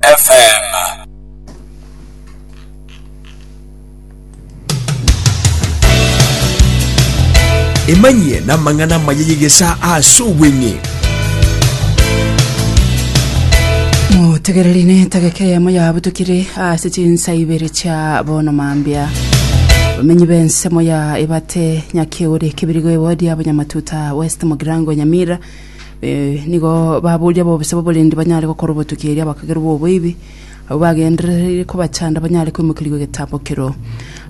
FM. emanyie n'amang'ana amaya y'egesa ase obweng'e mutegereri netageka eyemo yabutukire ase chinsa ibere chia bono mambia bamenyi b'ensemo ya ebate nyakeuri kibirigo ewodi ya bonyamatuta west mogirango nyamira Eh, nigo baboria bobisa baborendi banyare gokora obotuki eria bakagerwa oboibi abo bagenderereire kobachanda banyare koimokerigwa egetambo kero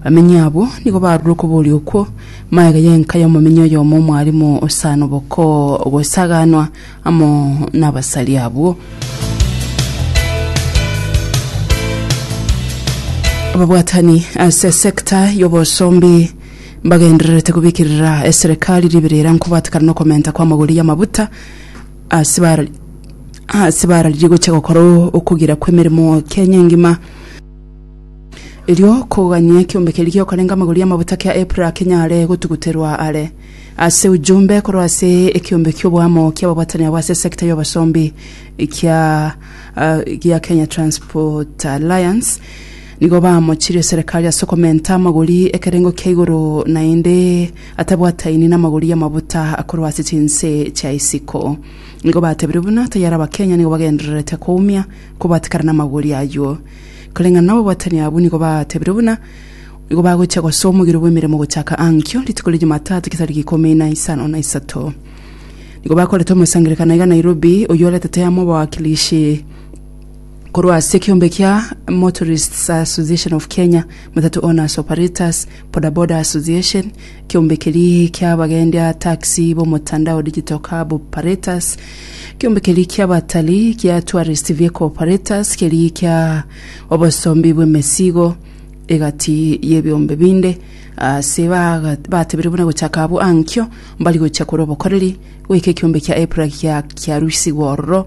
bamenyi abo nigo barure okoboria okwo maega yenka y'omomenyi oyomo omwarimu osana oboko gosaganwa amo n'abasari abwo ababwatani ase sekta y'obosombi mbagendererete kobikirira eserekari riberera nkobatekana nokomenta kw'amagori y'amabuta ase bara ase bararirie gocha gokora okugira kw'emeremo Kenya engima erio kogania ekiombe keria giokorenga amagori y'amabuta kia EPRA kenyare gotuguterwa are ase ujumbe korwa ase ekiombe ki'oboamo ki'ababwatani abo ase sector y'obosombi kia ah, gia Kenya Transport Alliance Nigo baamochirie Serekari ase okomenta amagori ekerengo kia igoro, naende atabwataini namagori y'amabuta akorwa ase chinse chia isiko. Nigo batebirie buna tayare Abakenya nigo bagendererete koumia kobwati kare namagori ayio. Koreng'ana nobobwatani abwo nigo batebirie buna nigo bagochia gosoa omogiro bw'emeremo gochaka ankio rituko ria Jumatatu egetariki ikomi na isano na isato. Nigo bakorete omosangererekano iga Nairobi, oyio oretete amo abawakilishi, korwa ase ekiombe kia Motorists Association of Kenya, Matatu Owners Operators, Bodaboda Association, ekiombe keri kia abagendi a taxi b'omotandao Digital Cab Operators, ekiombe keri kia abatari kia Tourist Vehicle Operators, keri kia obosombi bw'emesigo, egati y'ebiombe binde ase baga- batebirie buna gochaka abwo ankio mbari gochia korwa obokoreri goika ekiombe kia EPRA gia kiarusigwa ororo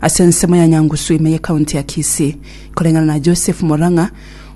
Ase ensemo ya Nyangusu ime y'ecounty ya Kisii, koreng'ana na Joseph Morang'a,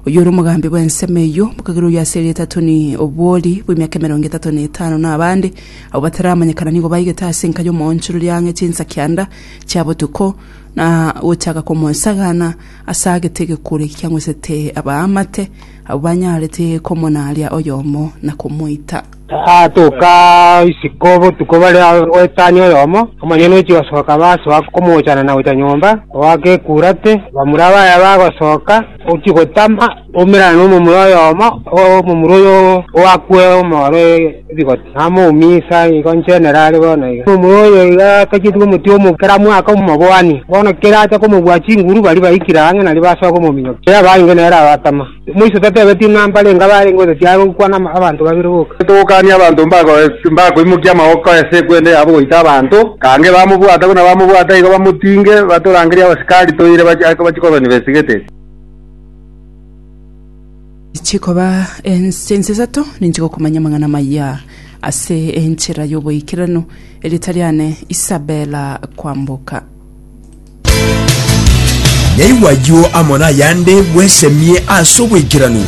oyio ore omogambi bw'ensemo eyio, bokagera oyio ase erieta Tony Obwori bw'emiaka emerongo etato na etano na abande abwo bataramanyekana nigo baigete ase enka y'omoonchorori ang'e chinsa kianda chia botuko na gochaka komosagana ase agete egekuro eki kiang'usete abaamate abwo banyarete komonaria oyomo na komoita. Gaatoka isiko botuko bare goetania oyomo, omonyene ochia gosoka basoa komoochana na gocha nyomba, goaka ekurate. Bamura baye bagosoka, ochia gotama, baumerana nomomura oyomo, omomura oyo oakwe omooro ebigoti, namouminsa igo inche nere are bono iga. Omomura oyo iga akachetigwa omote omobe kera mwaka omoboani, bono kera acha komobua chinguru baria baikire ang'e nario basoa komominyokia, kera abaange nere abatama. Moiso tatebetie ng'a mbarenge abarenge gose tiare gokwana abanto babere boka. Togokania abanto mbakoimokia amaboko ase ekwende yabo goita abanto, kange bamobwata buna bamobwata igo bamotinge, batorangerie abasikari toire bachie kobani besigete. Chikoba ense ense isato ninche gokomanya amang'ana amaya ase enchera y'oboikeranu, erieta riane Isabella Kwamboka. Naigwa ayio amo nayande bwesemie as'oboikeranu.